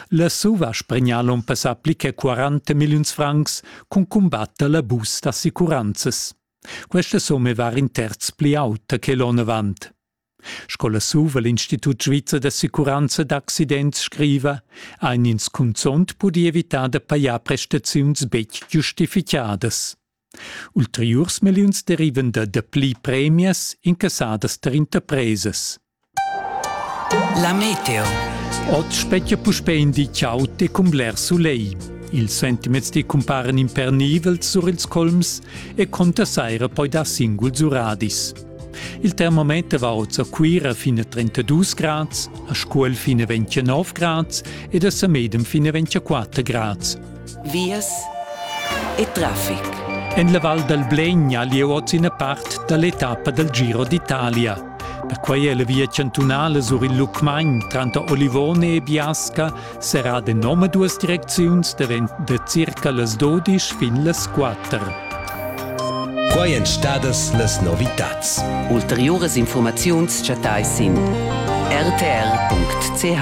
La Suva spregna l'onn passà pli che 40 milliuns francs cun cumbatter l'abus d'assicuranzas. Questa summa va in terz pli auta che l'onn avant. Sco la Suva l'Institut svizzer d'assicuranza d'accidents scriva, ein ins cunzont pudi evitar da pajar prestaziuns betg giustificadas. Ulteriurs milliuns derivan da dapli premias incassadas tar interpresas. La meteo. Oz spetga puspè in di ciao e cun bler sulegl. Ils sentiments ti cumparan impernivels sur ils colms e conta saira poi dar singuls uradis. Il termometer va oz a Cuira fin a 32 grads, a Scuol fin a 29 grads ed a Samedem fin a 24 grads. vias e traffic. En la Val dal Blegna lieu oz ina part da l'etappa dal Giro d'Italia. Perquai è la via chantunala sur il Lucmagn tranter Olivone e Biasca serrada en omaduas direcziuns davent da circa las 12 fin las 4. Quai èn stadas las novitads. Ulteriuras informaziuns chattais sin rtr.ch.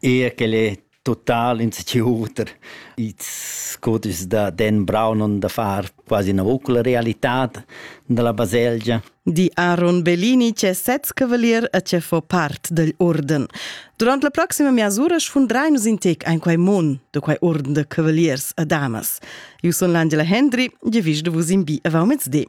Eir quel è total insecur. Ils cudeschs da Dan Brown han da far quasi ina ucla realitad dalla baselgia. Di Aaron Bellini ch'è sez cavalier e che fa part dagl urden. Durant la proxima miasura sfundrai nus in tec ein quei mon de quei urden de cavaliers e damas. Io sun l'Angela Hendry, ge vis de vus in bi avau mezdi.